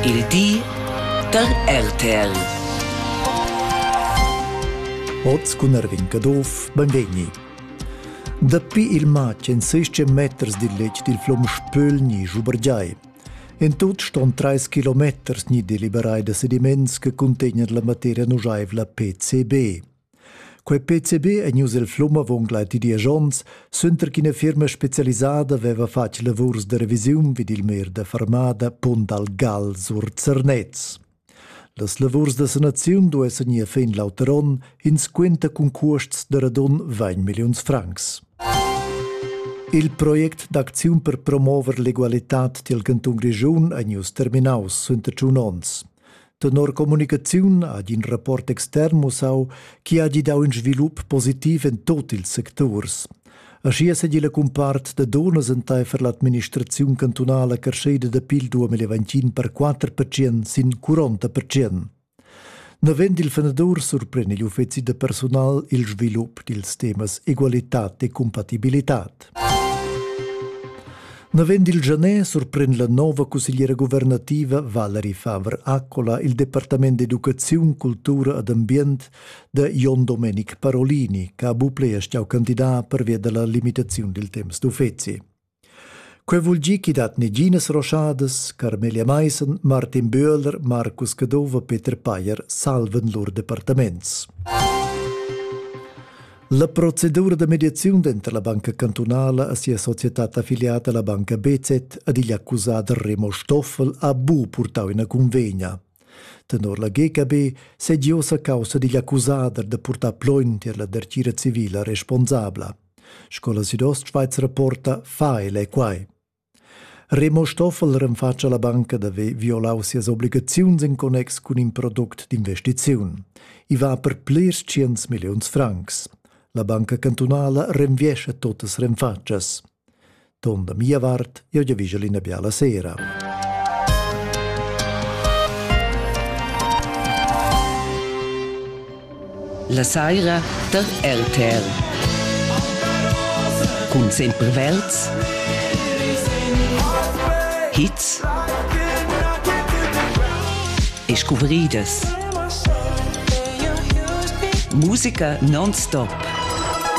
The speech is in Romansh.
Il di da RTL. Oz cun Erwin Caduff, benvegni. Dapi il matg en 16 meters dil letg dil flom Spöl ni Schubergiai. En tut ston 3 kilometers ni deliberai da sediments che contegnan la materia nujaivla PCB. Quei PCB ei ius el flum avon gleiti diesch onns, suenter ch'ina firma specialisada veva fatg lavurs de revisiun vid il mer de Farmada Pont dal Gal sur Zernez. Las lavurs da sanaziun duessan ir fin l'auter onn, ins quenta cun cuosts de radun 20 milliuns francs. Il project d'acziun per promover l'egualitad dil cantun Grischun ei ius terminaus suenter tschun onns. Tenor communicaziun ha in rapport extern mussau chi ha gi dau in svilup positiv in tot ils secturs. Aschia sedi la cumpart da donas enteifer l'administraziun cantunala carscheda da pil 2021 per 4 percent sin 40 percent. Navend il fenadur surpren igl uffeci da personal il svilup dils temas egualitad e compatibilitad. Navend il Genet surprend la nova cussegliera guvernativa Valerie Faber-Accola il Departament d'educaziun, cultura ed ambient da Jon Domenic Parolini, che ha buple e stau candidat pervia della limitazione del temps d'uffeci. Quei vul gi chi dat neginas roschadas Carmelia Meissen, Martin Böhler, Markus Cadova, Peter Payer salven lur departaments. La procedura da mediaziun denter la banca cantunala e sia societad affiliata la banca BZ ad igl accusat Remo Stoffel ha bu purtau ina convegna. Tenor la GKB segi ossa caussa digl accusader de purtar plogn tier la dertgira civila responsabla. Scola Südost-Schweiz rapporta fa ele quai. Remo Stoffel renfatscha la banca d'haver violau sias obligaziuns en connex cun in product d'investiziun. I va per plirs tschients milliuns francs. La banca cantunala renviescha totas renfatschas. Ton da mia vart, io giaviscia l'ina biala sera. La saira dad RTR cun sempre verds hits e scuvridas musica non stop